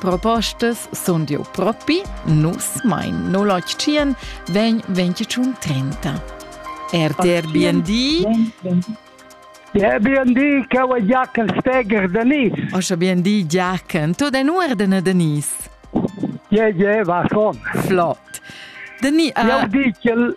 Propostas sun dieu propi, nus mein 087 vegn 21 30. RTRBND Der BND cau a Giachen Steger Denis. Osha BND Giachen, tu den uordene Denis. Je, je, va schon. Flott. Denis, uh... Jau dichel,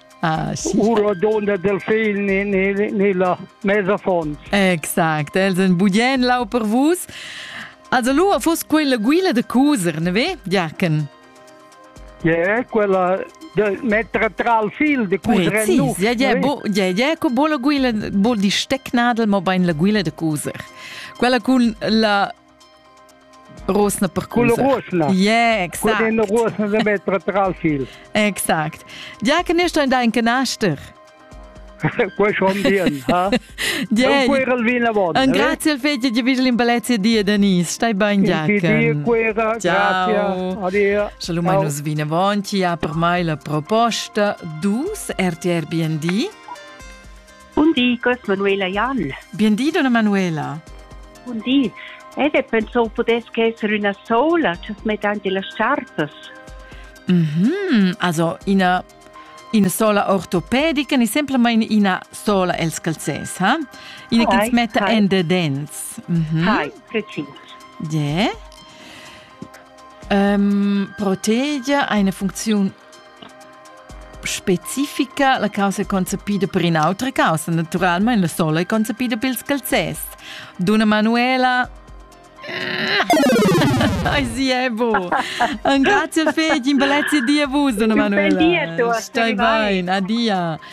Ah, sì. Uro donde delfin ni, ni, ni la mesa fons. Exact, els en budien lau per vus. Also lua fus quella guila de cuser, ne ve, Jachen? Yeah, quella de mettere tra il fil di cusere sì, nu. Ja, ja, bo, ja, ja, con bola guila, bol di stecknadel, ma ben la guila de cuser. Quella con la Rusna per culs. Yeah, exact. Con in rusna de metra tral fil. Exact. Dia che nisto da in canaster. Questo on bien, ha? Diei. Un quera il vino buono. Un grazie al figli di Vigil in Balezia di Denise. Stai ben, Giacomo. Quera, grazie. Adia. Shalom manus vino buono. Per mai la proposta dus RTR BND. Bundi, gos Manuela Jan. Bien di, donna Manuela. Bundi. Ed è pensò pudess che esser üna sola, just mettante las chartas. Mhm, also ina ina sola ortopedica ni semplamain ina sola els calzers, ha? Ina che ens metta en de dents. Mhm. Hai, precís. Yeah. Um, protegia eine Funktion Specifica la causa concepida per in'autra causa, naturalmein la sola è concepida pils calzers. Duna Manuela Ai sì, è buon. Un grazie al Fegin, bellezze di a vus, donna Manuela. Buen dia, Stai bene. Adia.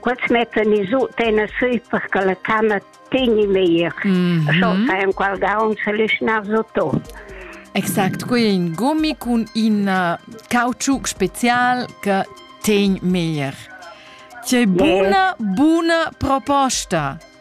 Quels mettan i sut ena sü per che la tama tegni meglier. Mm -hmm. Scho fa enqual daun se lischnar sotto. Exakt, qui è in gummi con in uh, cauciuc special che tegn meglier. C'è yes. buna, buna proposta.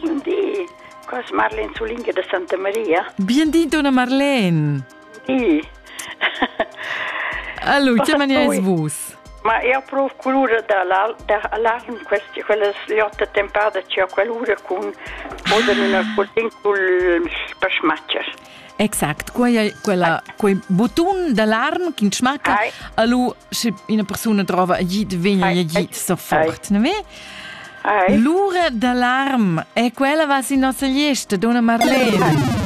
Bun di, cos Marlene Zulinga da Santa Maria. Bien di, donna Marlene. Di. Allora, che mania es vus? Ma io provo culura dall'alarm queste quelle sliotte tempada ci ho quell'ura con oder una culin col pasmaccher. Exact, quei è quella, quei butun d'alarm che smacca. Allo, se una persona trova gli vegna gli sofort, ne ve? L'ura d'alarm è quella was in nostra liesta, donna Marlene.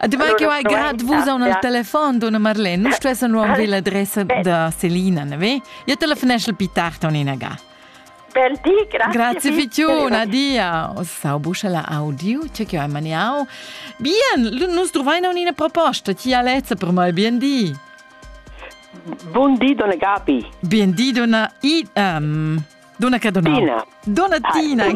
Además allora, que ho agat vos on al telefon, donna Marlene. Nu stessa nu am la adressa da Selina, ne ve? Io telefonesce più tardi on in aga. Bel di, grazie. Grazie Fitun, adia. O stau buscia la audio, c'è che hai maniau. Bien, nus trovaina un'ina proposta, ti Alezza per mai, bien di. Buon di, donna Gabi. Bien di, donna I... Um, donna che donna? Tina. Donna Tina. Hi,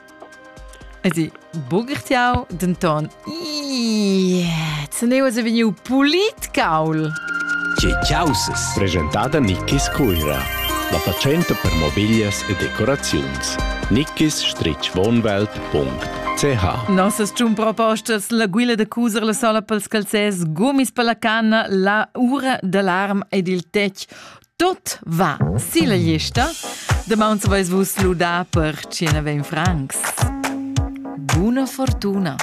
Esi bugirtiau denton Zeneus e vegniu pulit caul. Causes. Presentada Nickis Cuira. La fatschenta per mobiglias e decoraziuns. nickis-wohnwelt.ch Nossas tun propostas la guila da cuser la sola pels calzers, gumis per la canna, la ura d'alarm ed il tec. Tot va silla gliesta. Damaun veis vus ludà per tschena vein francs. Buna fortuna!